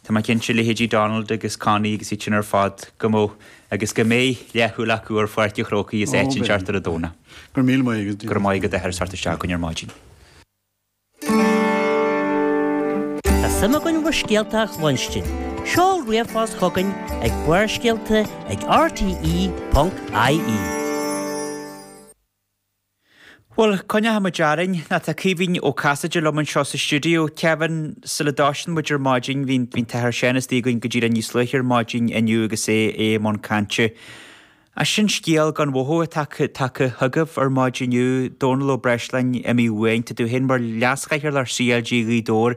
Tá mé cinnte leithéidí Donald agus Connie agus iad sin ar fad go mbeadh, agus go mbeidh, leathshúil acu ar Pháirc an Chrócaigh as áit inteacht ar an Domhnach. Go raibh míle maith agat. Go raibh maith agat a Athair as theacht isteach chugainn ar maidin. Tá suim againn bhur scéalta a chluinstin. Seol ríomhphost chugainn ag barrscéalta ag rte.ie. Bhuel, coinneoidh muid orainn. Ná tá Caoimhín Ó Casaide liom anseo sa stiúideo. Kevin, sula dtoisíonn muid ar maidin, bhí an tAthair Seán istigh againn go díreach níos luaithe ar maidin inniu agus é i mbun cainte. As sin scéal gan mhothú atá tagtha chugaibh ar maidin inniu, Dónall Ó Breisleáin, imithe uainn. Tá tú féin mar Leas-Chathaoirleach CLG Ghaoth Dobhair.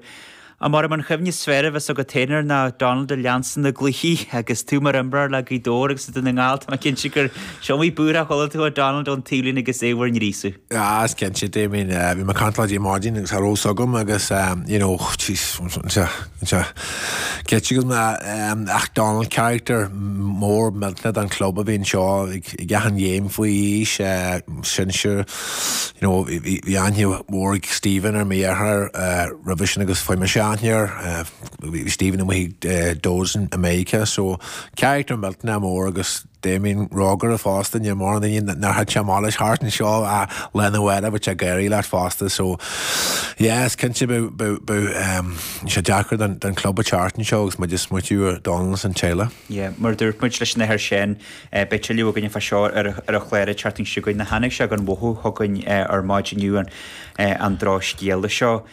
Abair liom an chuimhne is fearr a bheas agat féin ar ná Donald a leanstan na gcluichí agus tú mar imreoir le Gaoth Dobhair agus le Dún na nGall, tá mé cinnte gur 's iomaí búirthe a chuala tú ó Donald ón taobhlíne agus é bhur ngríosadh. Ah, is cinnte, Damien, bhí mé ag caint leat ar maidin agus cha raibh a fhios agam agus you know, jeez, anseo, ceitte go na ach Donald character mór millteanach den club a bhí anseo ag achan game faoi aois, sinsir, you know bhí aithne mhór ag Stephen air mo dheartháir roimhe sin agus fuair mise aithne air bhí Stephen amuigh ag Dodds i Meiriceá so character millteanach mór agus Damien rógaire fosta níl mórán daoine nár thit sé amach leis thart anseo ach lá arna mhárach bheadh sé ag gáirí leat fosta so yeah is cinnte beidh sé deacair don club an tseachtain seo agus muid ag smaoitiú ar Donald is an teaghlach Yeah, mar a dúirt muid leis an Athair Seán, beidh tuilleadh againn fá seo ar an chlár an tseachtain seo chugainn. Tháinig sé gan mhothú chugainn ar maidin inniu, an drochscéala seo.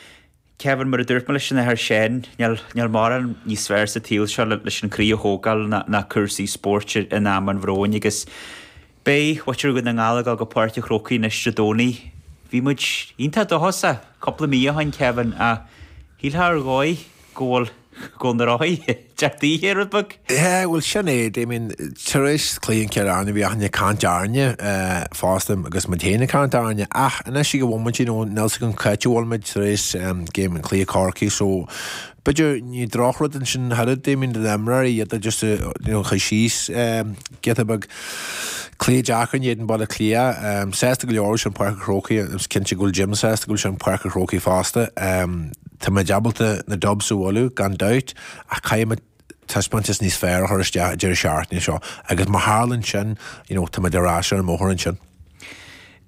Kevin, mar a dúirt mé leis an Athair Seán, níl mórán níos fearr sa tsaol seo leis an gcroí a thógáil ná cúrsaí spóirt in am an bhróin agus, Beidh muintir Dhún na nGall ag dul go Páirc a' Chrócaigh anois Dé Domhnaigh. Bhí muid iontach dóchasach cúpla mí ó shin, Kevin, ach shílfeá ar dhóigh go bhfuil go na rothaí ag teacht daoithe rud beag! Yeah, bhuel sin é, Damien, tar éis chluiche i gCill Airne bhí achan nduine ag caint orainne fosta agus muid féin ag caint orainne ach anois ag an mhóimint you know níl 's agam c'áit a bhfuil muid tar éis game cluiche Chorcaí so B'fhéidir, ní drochrud é sin ach oiread, Damien do na himreoirí, iad a just, you know, chur síos giota beag cluiche ag teacht in éadan Baile Átha Cliath. Sásta go leor go bhfuil sé in Páirc an Chrócaigh, is cinnte go bhfuil Jim sásta go bhfuil sé in Páirc an Chrócaigh fosta. Tá muid ábalta na Dubs a bhualadh, gan dabht, ach caithfidh muid taispeántas níos fearr a chur isteach an deireadh seachtaine seo agus má tharlann sin, you know, tá muid ar ais ar an mbóthar ansin.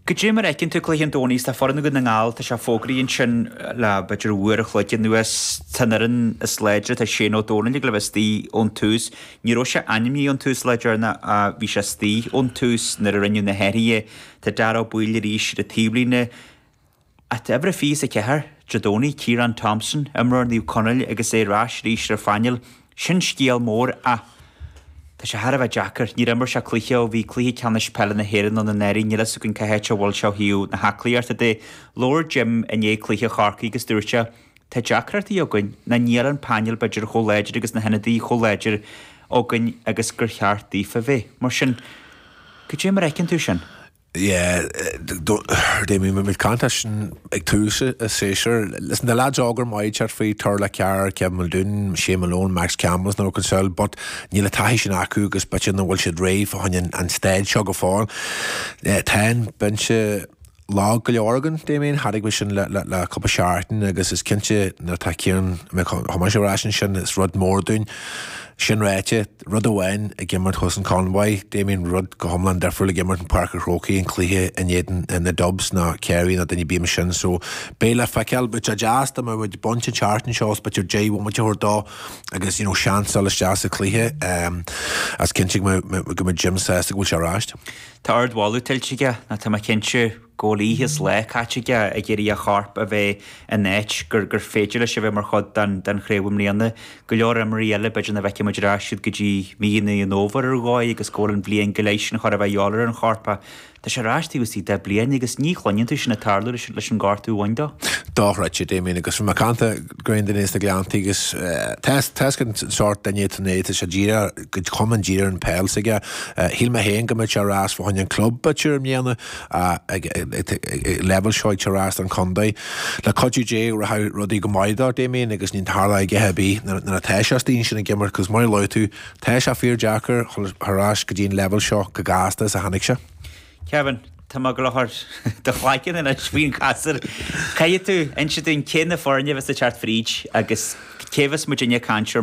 Goidé mar a fheiceann tú cluiche an Domhnaigh, tá foireann Dhún na nGall, tá sé fógraithe ansin le b'fhéidir uair an chloig anuas, tá an fhoireann is láidre, tá Shane Ó Domhnaill ag gabháil a bheith istigh ón tús, ní raibh sé ainmnithe ón tús lá deireanach ach bhí sé istigh ón tús nuair a rinneadh na hathruithe, tá Darragh Ó Baoill arís ar an taobhlíne, Ag uimhir 24, Dé Domhnaigh, Ciarán Thompson, imreoir Naomh Conaill agus é ar ais arís ar an phainéal, sin scéal mór ach tá sé thar a bheith deacair. Níor imir sé cluiche ó bhí Cluiche Ceannais Peile na hÉireann ann anuraidh, níl fhios againn cá háit a bhfuil sé ó thaobh na haclaíochta de. Labhair Jim i ndiaidh cluiche Chorcaí agus dúirt sé Tá deacrachtaí againn ná níl an painéal b'fhéidir chomh láidir agus na hionadaithe chomh láidir againn agus gur cheart daofa bheith mar sin. Cad é mar a fheiceann tú sin? Yeah, Damien, muid ag caint air sin ag tús an tséasúir. Listen, tá lads óga maithe ag teacht fríd, Turlough Carr, Kevin Muldoon, Shea Malone, Max Campbell is no concern, but níl an taithí sin acu agus b'fhéidir nach bhfuil siad réidh fá choinne an staid seo go fóill. Yeah, tá an binse lag go leor againn, Damien, chonaic mé sin le cúpla seachtain agus is cinnte nuair atá Ciarán, I mean, chomh maith is ar ais ansin, sin is rud mór dúinn. Sin ráite. Rud amháin ag imirt thuas in Convoy, Damien Rud go hiomlán difriúil ag imirt in Páirc an Chrócaigh, an cluiche in éadan na Dubs, ná Ciarraí ná duine ar bith ansin, so beidh le feiceáil. Bheadh sé deas dá mbeadh muid ag baint an tseachtain seo is b'fhéidir deich bhomaite a thabhairt dó agus, you know, seans dul isteach sa chluiche, is cinnte go mbeidh go mbeidh Jim sásta go bhfuil sé ar ais. Tá ardmholadh tuillte aige, ná tá mé cinnte. go bhfuil oíche is lá caite aige ag iarraidh a chorp a bheith in áit gur gur féidir leis a bheith mar chuid den den chraobh i mbliana. Go leor imreoirí eile b'fhéidir nach bhfeicfidh muid ar ais siad go dtí mí Mheán an Fhómhair ar dhóigh agus go bhfuil an bhliain go leith sin chóir a bheith ag dul ar an chorp ach tá sé ar ais taobh istigh de bhliain agus ní chluineann tú sin ag tarlú leis leis an gortú a bhain dó. Dochreidte, Damien, agus bhí mé ag caint le corr duine as na Gleanntaí agus tá's againn cén sórt duine atá ann, tá sé díreach go hiomlán dírithe ar an peil s'aige. Shíl mé féin go mbeadh sé ar ais fá choinne an club b'fhéidir i mbliana, Ag leibhéal seo ach teacht ar ais don chontae, le cuidiú Dé, rachaidh rudaí go maith dó Damien agus ní tharlóidh a dhath ar bith nuair atá sé istigh ansin ag imirt agus mar a luaigh tú, tá sé fíor deacair teacht ar ais go dtí an leibhéal seo, chomh gasta is a tháinig sé. Kevin, tá mé ag rá ar do chlaiceann anois faoin ghasúr. Caithfidh tú inse dúinn cé na foirne a bheas ag teacht fríd agus cé a bheas muidinne ag caint ar